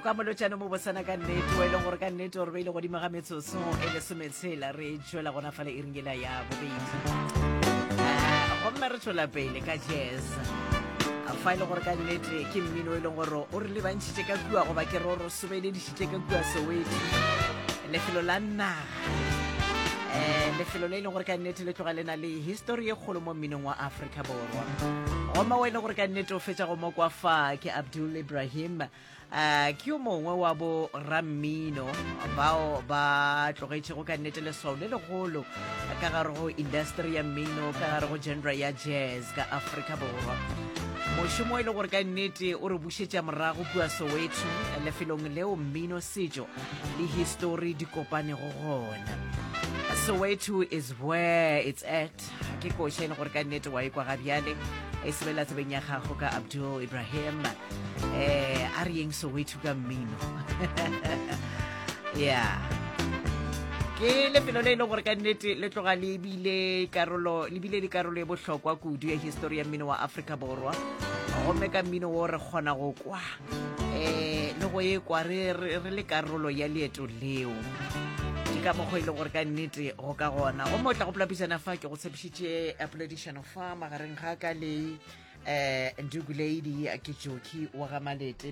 ka molotšane mo bosana ka nnete wa e leng gore ka nnete gore ba ile godimo ga metsotso e lesometshela re tšwela gona fale e ringela ya bobedi gomme re tšwela pele ka jazz fa e le gore ka nnete ke mmino e leng gore o re lebantšhitše ka kua goba ke re o re sobelediše tle ka kua soweto lefelo la naga um lefelo le e leng gore ka nnete le tloga le na le histori ye kgolo mo mminong wa aforika borwa goma wa e leng gore ka nnete o fetsa go mokwa fa ke abdul ibrahim um ke yo mongwe wa bo rammino bao ba tlogetšego ka nnete leswao le legolo ka gare go industry ya mmino ka gare go genre ya jazz ka aforika borwa mošomo e le gore ka nnete o re Šetša morago kua Soweto, lefelong leo mmino, setšo le histori di kopanego gona. Soweto is where it's at. Ke koša e le gore ka nnete wa e kwa ga bjale e sebela tsebeng ya gago ka Abdul Ibrahim. Eh, a re yeng Soweto ka mmino. ya ke lefelo le e le gore ka nnete le tloga le bile karolo le bile le karolo e bohlokwa kudu ya histori ya mmino wa afrika borwa gomme ka mmino wo re kgona go kwa um le go e kwa re le karolo ya leeto leo ke ka mokgwa e leng gore ka nnete go ka gona go mo tla go polapisana fa ke go tshepišitše a poledišano fa magareng ga ka le um eh, ndugulady ke joki wa ga malete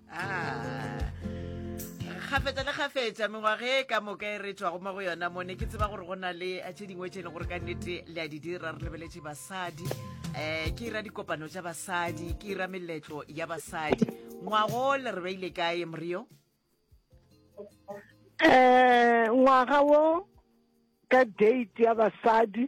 gafetsa le gafetsa mengwaga e ka moka e re tswago mo go yona mone ke tseba gore go na le tse dingwe tse e leng gore ka nnete le a di dira re lebeletse basadi um ke ira dikopano tsa basadi ke ira meletlo ya basadi ngwago le re beile kae morio um ngwaga wo ka date ya basadi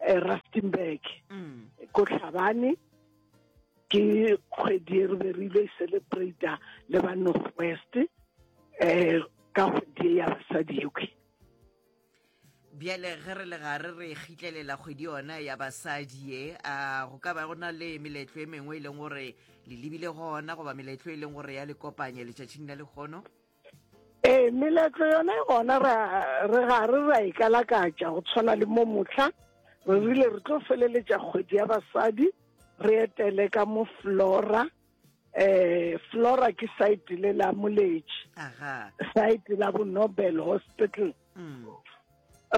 eh, rustenburg mm. ko tlhabane ke kgwedi e re be re ile e celebrata le ba north west um ka kgwedi e ya basadi ewe bjale ge re le gare re kgitlelela kgwedi yona ya basadi ye a go ka ba go na le meletlo e mengwe e leng gore le lebile gona goba meletlo e leng gore ya le kopanya letšatšing la lekgono ee meletlo yone gona re ga re ra e kalakatša go tshwana le mo motlha re rile re tlo feleletša kgwedi ya basadi re etele ka mo flora eh flora ke site le la moletši site la bo nobel hospital mm.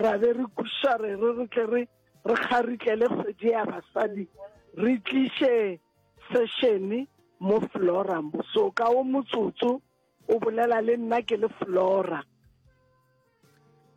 ra be re kuša re re re tle re re kgaritlele kgwedi ya basadi re tliše sešene mo flora so ka o motsotso O bolela le nna ke le Flora.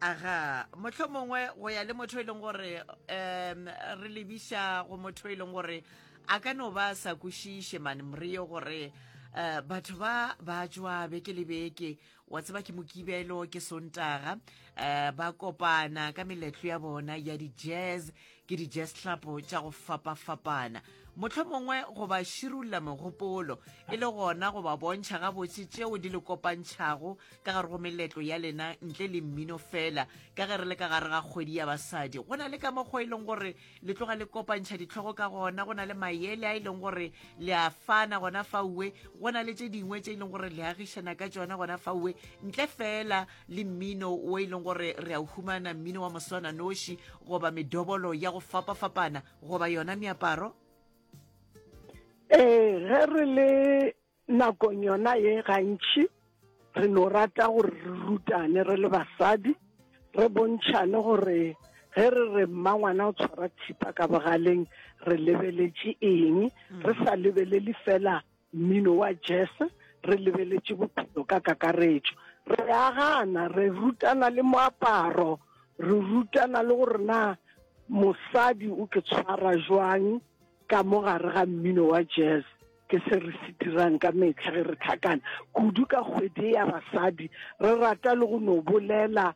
Aga, motho mongwe go ya le motho e leng gore um re lebiša go motho e leng gore a ka no ba sa kwešiše mane mreo gore um batho ba ba jwa beke le beke wa tseba ke mokibelo ke sontaga um ba kopana ka meletlo ya bona ya di-jazz ke dijeslapo tša go fapafapana motlho mongwe go ba širulla megopolo e le gona go ba bontšha gabotse tšeo di le kopantšhago ka gare go meletlo ya lena ntle le mmino fela ka ge re le ka gare ga kgwedi ya basadi go na le ka mokgwa e leng gore le tloga le kopantšha ditlhogo ka gona go na le mayele a e leng gore le a fana gona faue go na le tše dingwe tše e leng gore le agišana ka tsona gona faue ntle fela le mmino o e leng gore re a o humana mmino wa moswana noši goba medobolo ya go fapa-fapana goba yona meaparo ee ge re le nakong yona ye gantši re no rata gore re rutane re le basadi re bontšhane gore ge re re mma ngwana o tshwara thipa ka bogaleng re lebeletše eng mm. re sa lebelele fela Mmino wa Jese, re lebeletše bophelo ka kakaretšo. Re a gana, re rutana le moaparo, re rutana le gore na mosadi o ke tshwara jwang ka mo gare ga mmino wa jazz ke se re se dirang ka metlha ge re tlhakana kudu ka kgwedi ya basadi re rata le go no bolela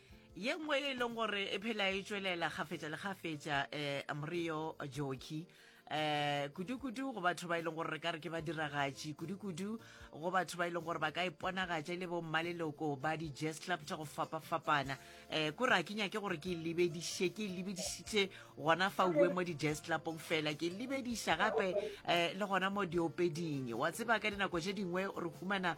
ye nngwe e leng gore e phela e tswelela gafetša le gafetša um morio joki eh kudu-kudu go batho ba e leng gore re ka re ke ba diragatši kudu-kudu go batho ba e leng gore ba ka iponagatša e le bo mmaleloko ba di-jazz club tša go fapa-fapana um ko ra ke nyake gore ke lebediše ke lebedišitše gona fa uwe mo di-jazz clubong fela ke lebediša gape um le gona mo diopeding wa tseba ka dinako tše dingwe re humana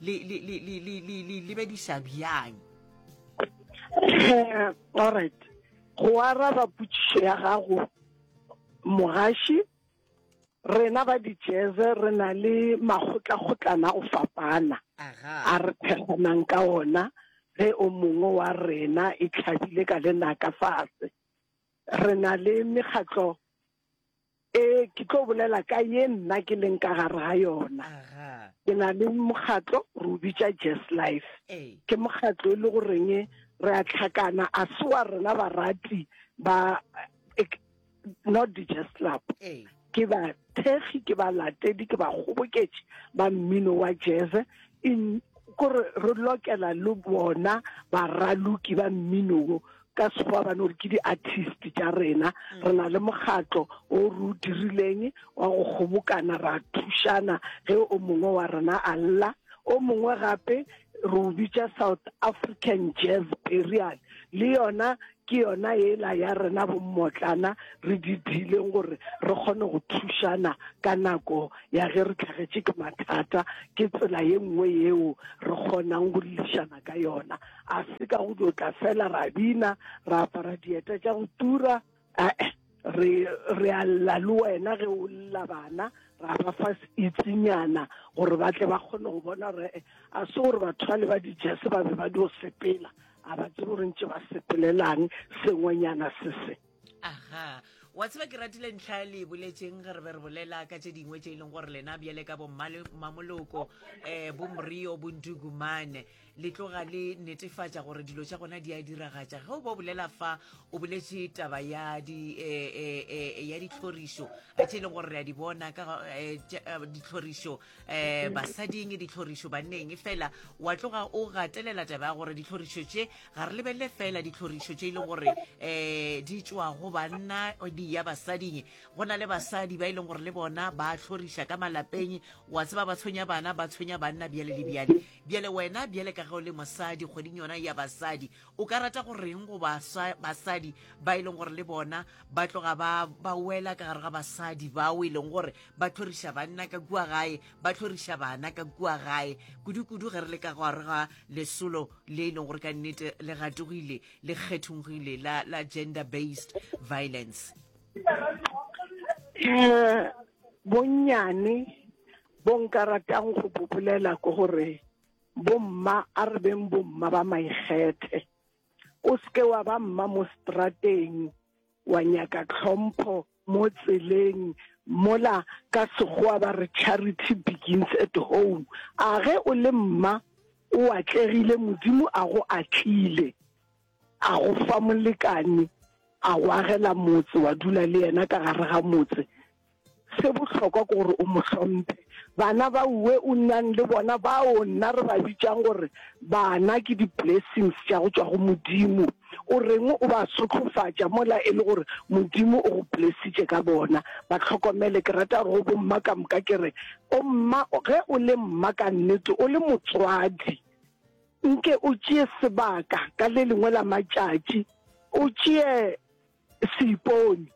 le le le le le le le lebedisa bjang eh, all right go araba putsišo ya gago mogaši rena ba dijeze re na le makgotlakgotlana go fapana a re pheganang ka ona ge o mongwe wa rena e tlhabile ka lenaka fase re na le mekgatlo Ee, ke tlo bolela ka ye nna ke leng ka gare ga yona. Ke na le mokgatlo re o bitša Jess Life. Ke mokgatlo e le goreng re a tlhakana a se wa rena barati ba eh, not the Jess Club. Ke ba thekgi ke ba latedi ke ba kgoboketše ba mmino wa jazz in kore re lokela le bona baraloki ba mmino wo ka sekgowa ba no re ke di-artist tša rena mm. re na le mokgatlo o re o dirileng wa go kgobokana ra thušana ge o mongwe wa rena a lla o mongwe gape re o bitša south african jazz perial le yona ke yona ela ya rena bommotlana re di dileng gore re kgone go thušana ka nako ya ge re tlhagetše ke mathata ke tsela ye nngwe yeo re kgonang go lešana ka yona A se ka go tlo tla fela ra bina, ra apara dieta tša go tura, ee, re, re a lla le wena ge o lla bana, ra ba fa itsinyana gore ba tle ba kgone go bona gore eh, a se gore batho ba le ba dijese ba be ba dio sepela, a ba tsebe gore ntše ba sepelelang sengwenyana se se. aha wa tseba ke ratile ntlha ya le boletseng re be re bolela ka tse dingwe tse e leng gore lena bjale ka bommamoloko um eh, bomrio bondugumane le tloga le netefatša gore dilo tša gona di a diragatša ge o bo bolela fa o boletse taba ya di eh, eh, ya ditlhorišo tse e leng gore re a di bona ka ditlhorišo um basading ditlhorišo banneng fela wa tloga o gatelela taba ya gore ditlhorišo tše ga re lebelele fela ditlhorišo tše e leng gore um di tšwa go banna di ya basading go na le basadi ba e leng gore le bona ba tlhoriša ka malapeng wa tseba ba tshwenya bana ba tshwenya banna bjale le bjale bjale wena bjale ka ge o le mosadi kgweding yona ya basadi O ka rata go reng go baswa basadi ba e leng gore le bona ba tloga ba ba wela ka gare ga basadi bao e leng gore ba tlhoriša banna ka kua gae ba tlhoriša bana ka kua gae kudu-kudu ge re le ka gare ga lesolo le e leng gore ka nnete le gatogile le kgethongile la, la gender based violence um bonnyane bo nka ratang go bobolela ke gore Bomma a re beng bomma ba maikgethe. O seke wa ba mma mo strateng wa nyaka tlhompho mo tseleng mola ka Sekgowa ba re charity begins at home. A ge o le mma o atlegile Modimo a go atlile. A go fa molekane, a go agela motse, wa dula le yena ka gare ga motse, se bohlokwa ke gore o mo hlomphe. Bana ba uwe o nnang le bona bao nna re ba bitšang gore bana ke di-blessings tša go tšwa go Modimo, o reng o ba sotlhofatša mola e le gore Modimo o go blessitše ka bona? Ba hlokomele. Ke rata gore go bomma ka moka ke re, O mma, ge o le mma ka nnete, o le motswadi. Nke o tšee sebaka ka le lengwe la matšatši, o tšee seipone,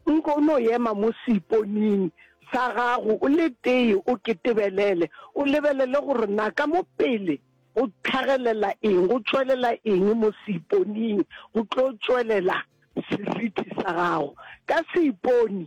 nke o no ema mo seiponing sa gago o le tee, o ke tebelele, o lebelele gore na ka mo pele go tlhagelela eng, go tšwelela eng mo seiponing, go tlo tšwelela seriti sa gago ka seipone.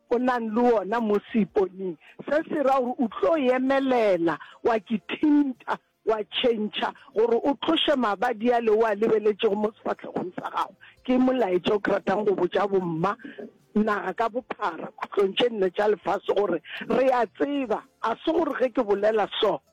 o nang le wona mo seiponing se se ra gore o tlo emelela wa ke thinta wa tšhentšha gore o tloše mabadi a le o a lebeletšego mo sefahlegong sa gago. Ke molaetša o ke ratang go botša bomma naga ka bophara khutlong tše nne tša lefase gore re a tseba, ga se gore ge ke bolela so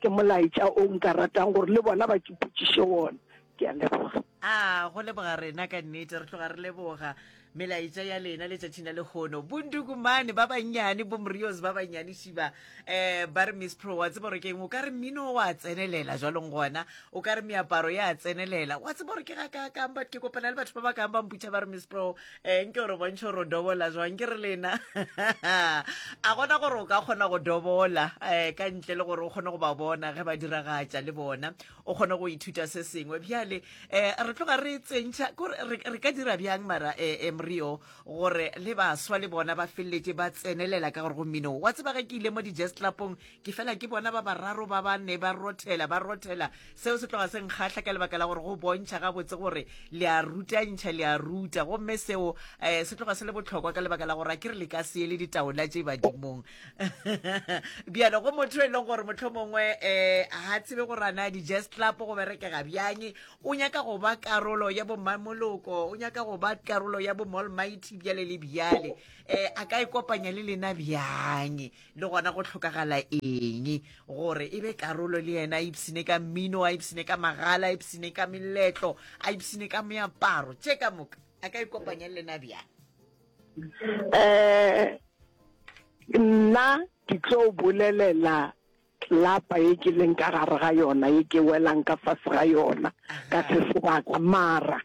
Ke molaetša o nka ratang gore le bona ba ke potšiše wona. Ke a leboga. A go leboga rena ka nnete, re tloga re leboga melaetša ya lena letšatšing la lekgono. Bondukumane ba bannyane, bomrios ba bannyane šiba um ba re miss pro wa tseba gore ke eng o ka re mmino wa tsenelela jwalong gona o ka re meaparo ya tsenelela wa tseba gore ke ga ka kang but ke kopana le batho ba ba kang ba mputšha ba re miss pro ee nke gore bontšhe gore o dobola jwang ke re lena a gona gore o ka kgona go dobola um ka ntle le gore o kgone go ba bona ge ba diragatša le bona o kgone go ithuta se sengwe bjale um re tloga re tsentšha kore re ka dira bjang mara um mrio gore le baswa le bona ba feleletše ba tsenelela ka gore go mmino wa tseba ge ke ile mo di-jazz clubong ke fela ke bona ba bararo ba ba ne ba rothela ba rothela seo se tloga se nkgatlha ka lebaka la gore go bontšha gabotse gore le a rutantšha le a ruta gomme seo um se tloga se le botlhokwa ka lebaka la gore a ke re le ka se le ditaola tše badimong bjalo go motho e leng gore motlho mongwe um ga tsebe gore ana di-jazz club go berekega bjang o nyaka go ba karolo ya bomamoloko o nyaka go ba karolo ya bomolmighty bjale le bjale um a ka e kopanya le lena bjang le gona go tlhokagala eng gore e be karolo le yena a ipsine ka mmino a ipsine ka magala a ipsine ka meletlo a ipsine ka meaparo tše ka moka a ka ikopanya le lena bjang um nna ke tlo bolelela lapa ye ke leng ka gare ga yona ye ke welang ka fase ga yona ka se sebaka mara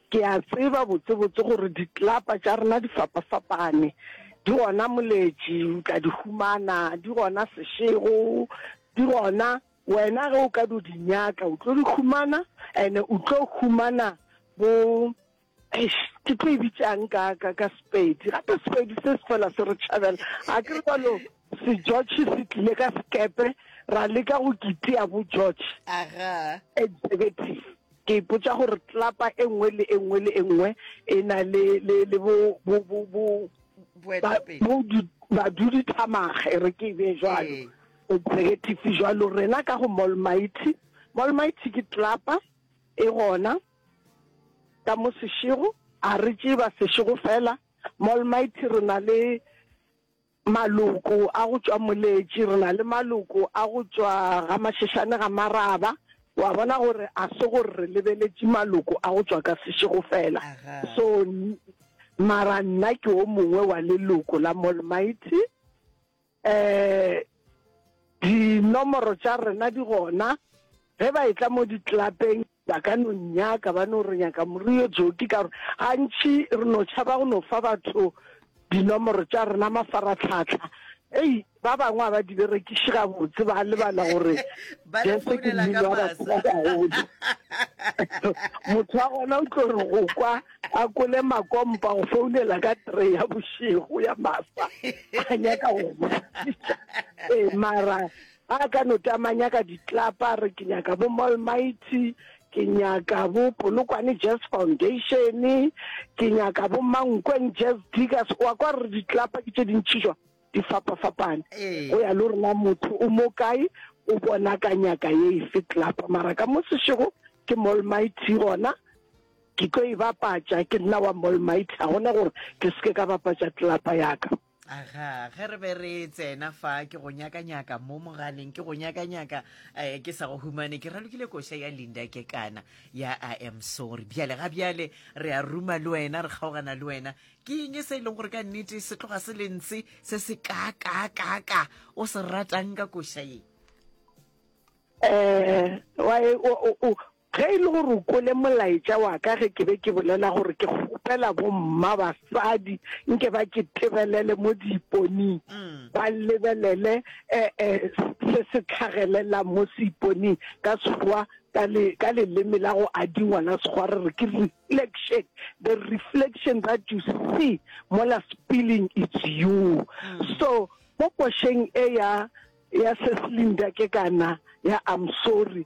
Ke a tseba botsebotse gore ditlapa tša rena di fapafapane, di gona Moletši, o tla di humana, di gona Sešego, di gona wena ge o ka do di nyaka o tlo di humana ene o tlo humana bo ke tlo e bitsang ka ka ka sepedi gape sepedi se se fela se re tšhabela a ke re kwalo se george se tlile ka sekepe ra leka go kitea bo george executive Ke ipotša gore tlapa e nngwe le e nngwe le e nngwe e na le, le, le bo, bo, bo, bo, ba, bo di, badudithamaga, e re ke e bee jwalo, executive jwalo, rena ka go Molmighty. Molmighty ke tlapa e gona ka mo sešego, a re tšee ba sešego fela. Molmighty re na le. Maloko a go tšwa Moletši, re na le maloko a go tšwa ga Mašešane ga Maraba, wa bona gore a se gore re lebeletše maloko a go tšwa ka sešego fela. So mara nna ke o mongwe wa leloko la Molmaiti. Um dinomoro tša rena di gona Ge ba etla mo ditlelapeng, ba ka no nnyaka, ba no re nyaka moriri yo joki, ka gore gantši re no tšhaba go no fa batho dinomoro tša rena mafaratlhatlha. Ei, ba bangwe ga ba di berekiše gabotse, ba lebala gore Ba re Jesu ke founela ka mmino wa batho ba masa. bagolo. Motho wa gona o tlo re go kwa a kole makompa go founela ka three ya bošego ya masa a nyaka go botšiša. Ee, mara A ka no tla ma nyaka ditlapa, a re ke nyaka bo Molmighty, ke nyaka bo Polokwane Jazz Foundation, ke nyaka bo Mankweng Jazz Diggers. Wa kwa re ditlapa ke tše dintši jwa di fapa-fapane. Go ya le rena motho o mo kae, o bona ka nyaka ye efe tlapa. Mara ka mo sešego ke Molmighty gona, ke tlo e bapatša, ke nna wa Molmighty. Ga gona gore ke seke ka bapatša tlapa ya ka. aga ge re be re tsena fa ke go nyakanyaka mo mogaleng ke go nyakanyaka um ke sa go humane ke ralokile koša ya linda ke kana ya i am sorry bjale ga bjale re a ruma le wena re kgaogana le wena ke eng e se e leng gore ka nnete se tloga se le ntse se se ka ka ka ka o se ratang ka koša ye um Ge e le gore o kwele molaetša wa ka ge ke be ke bolela gore ke kgopela bomma basadi nke ba ke tebelele mo diiponing, ba lebelele se se tlhagelelang mo seiponing, ka Sekgowa, ka leleme la go adingwa la Sekgowa re re ke reflection, the reflection that you see mola spilling it's you. So mo košeng e ya Cecilin Dake kana ya I'm sorry,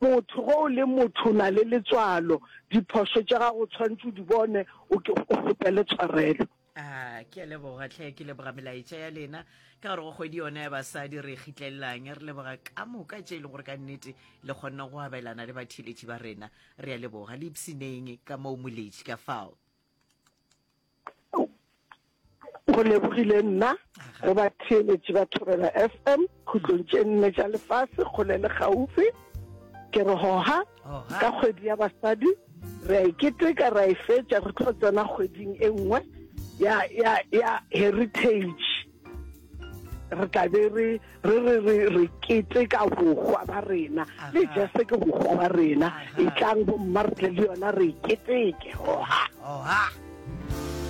Motho ge o le motho o na le letswalo, diphošo tša gago o tshwanetse o di bone, o kgopele tshwarelo. A ke a leboga tlhe, ke leboga melaetša ya lena ka gore go kgwedi yona ya basadi re kgitlelelang. Re leboga ka moka tše e le gore ka nnete le kgonne go abelana le batheeletši ba rena. Re a leboga le ipshineng ka moo moletši ka fao. go lebogile nna re ba theeletše ba thobela fm khutlong tše nne tša lefase kgole le gaufi ke re hoga ka kgwedi ya basadi re a iketeka e ra e fetša re tlo tsena kgweding e nngwe ya ya ya heritage re tla be re re re re re keteka bohwa ba rena le jese ke bohwa ba rena e tlang bomma re tle le yona re keteke oha oha